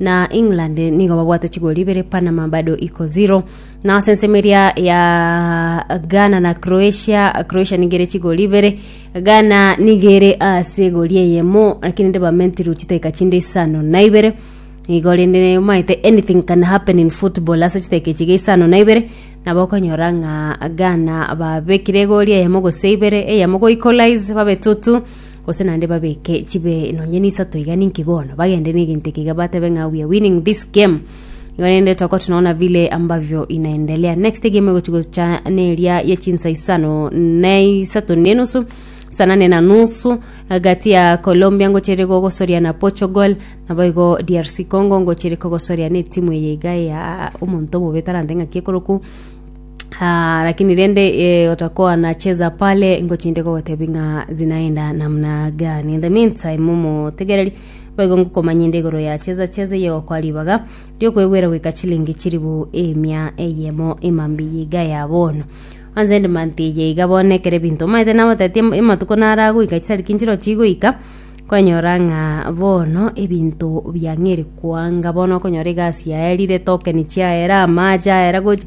na england nigo babwate chigori ibere panama bado iko zero na ase ensemo eria ya ghana na croatia croatia nigo ere chigori ibere ghana nigo ere ase egori eyemo lakini rende bamentirwe chidakika chinde isano na ibere igo rende omaete anything can happen in football ase chidakika echi isano na ibere nabo okonyora ng'a ghana babekire egori eyemo gose ibere eyemo go equalize babe tutu Gose naende babeke chibe nonye nisato iga ninki bono, bagende negento eke iga batebe ng'a we are winning this game. Igo rende toko tunaona vile ambavyo inaendelea. Next egame egochi gocha neria ya chinsa isano na isato na enusu saa nane na nusu gati ya Colombia ngochire gogosoria na Portugal nabo igo DRC Congo ngochire kogosoria na etimu eye iga ya omonto omobe tarante ng'aki ekoroku Ah, lakini rende e, watakuwa anacheza pale ngochinde kogotebi ng'a zinaenda namna gani in the meantime momo tegereri boigo ngokomanya inde igoro ya cheza cheza iyo kwa ribaga riokwegwera gwika chilingi chiribu emia eyemo emambi yiga ya bono anze ndi manti ye iga bono ekere binto maete na matati ematuko nara goika chisari kinchiro chigoika kwanyora ng'a bono ebinto biang'eri kwanga bono okonyora egasi yaerire tokeni chiaera amache aera gochi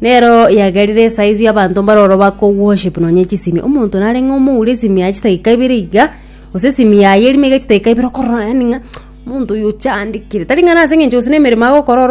Nero yagerire esaa eyio abanto mbare oro bakoworship nonya echisimi omonto nareng'e omoure esimi yaye chidakika ibere iga gose esimi yaye erimo iga chidakika ibere okorora yaani ng'a omonto oyo ochandekire tari ng'a nase eng'encho gose nemeremo agokora oro